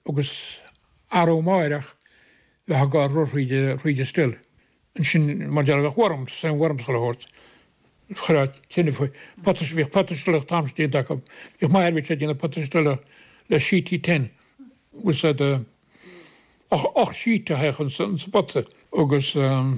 agus arú amáireach bheifeá ag gabháil rud thríd an stil. Ansin mar a déarfá bheadh worm, same worm is chuile shórt. Chuirfeá tine faoi. Potaí, bhíodh potaí stileach an t-am sin déanta acu. Bhíodh m'athair bhíodh sé ag déanamh potaí stileach le sheet tin. Agus ocht sheet a théadh in sa bpota agus ehm.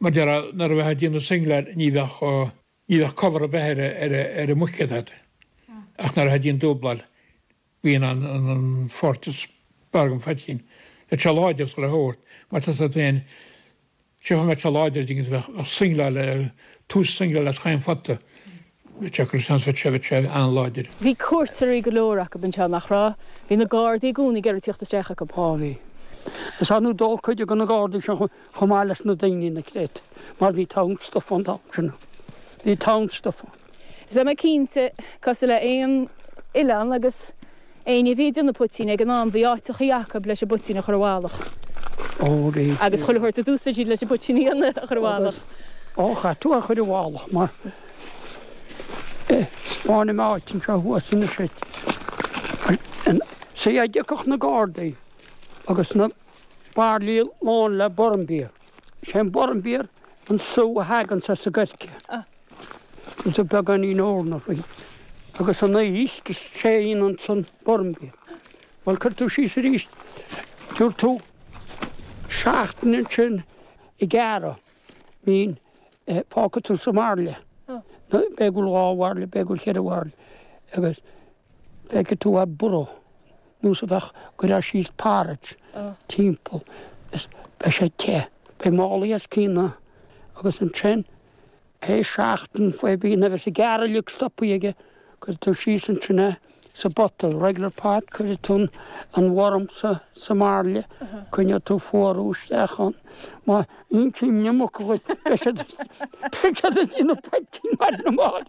Mar a déarfá nuair a bheifeá ag déanamh singleáil ní bheadh ní bheadh cover ar bith ar an mbuicéad agat ach nuair a théadh an dúbláil bíonn an pháirt is fearr den phoitín le te láidir sula thabhairt mar tá tú féin sé chomh mbeadh te láidir dtí go bheadh singleáil tús singleáil as chaon phota. Bhí Jack Russell anseo sé go te, bhí an-láidir. Bhí cuairteoirí go leor agaibh anseo, nach raibh? Bhí na Gardaí i gcónaí ag iarraidh tíocht isteach agaibh. Á bhí. Is ar ndóigh d'óladh cuid de na Gardaí seo chomh maith leis na daoine ina creat mar bhí togha stuff ann an t-am sin. Bhí togha stuff ann. Is tá mé cinnte, cosúil le haon oileán agus. Éinne a bhí ag déanamh poitín ag an am, bhí áiteachaí agaibh leis an bpoitín a chur i bhfalach. Ó ré. Agus chuile shórt a d'úsáid sibh leis an bpoitín a dhéanamh a chur i bhfalach. Ó chaith tú a chur i bhfalach mar é. Smaoinigh mé áit anseo thuas anois ar an. Sea, dá dtiocfadh na Gardaí agus na bairillí lán le Bournbier. Is é an Bournbier an sú a thagann as an gcoirce. Tá beagáinín eorna faoi. Agus an aois, tá sé ionann san orm faoi. Bhuel, cuirfidh tú síos arís. Tabharfaidh tú seachtain ansin ag gearradh mín, fágfaidh tú sa mbairille. B'fhéidir go bhfuil dhá bhairille, b'fhéidir go bhfuil cheithre bhairille. Agus feicfidh tú a' burro, nó sa bheadh, cuirfeá síos porridge timpeall is beidh sé te. Beidh málaí os a chionn, agus ansin. Pé seachtain faoi bhíonn a bheas an gearradh uilig stopthaí aige cuirfidh tú síos ansin é sa bpota regular pot cuirfidh tú an worm sa sa mbairille coinneoidh tú fuarú isteach ann má iompaíonn na muca dhuit beidh siad beidh siad ag déanamh poitín maith na marbh.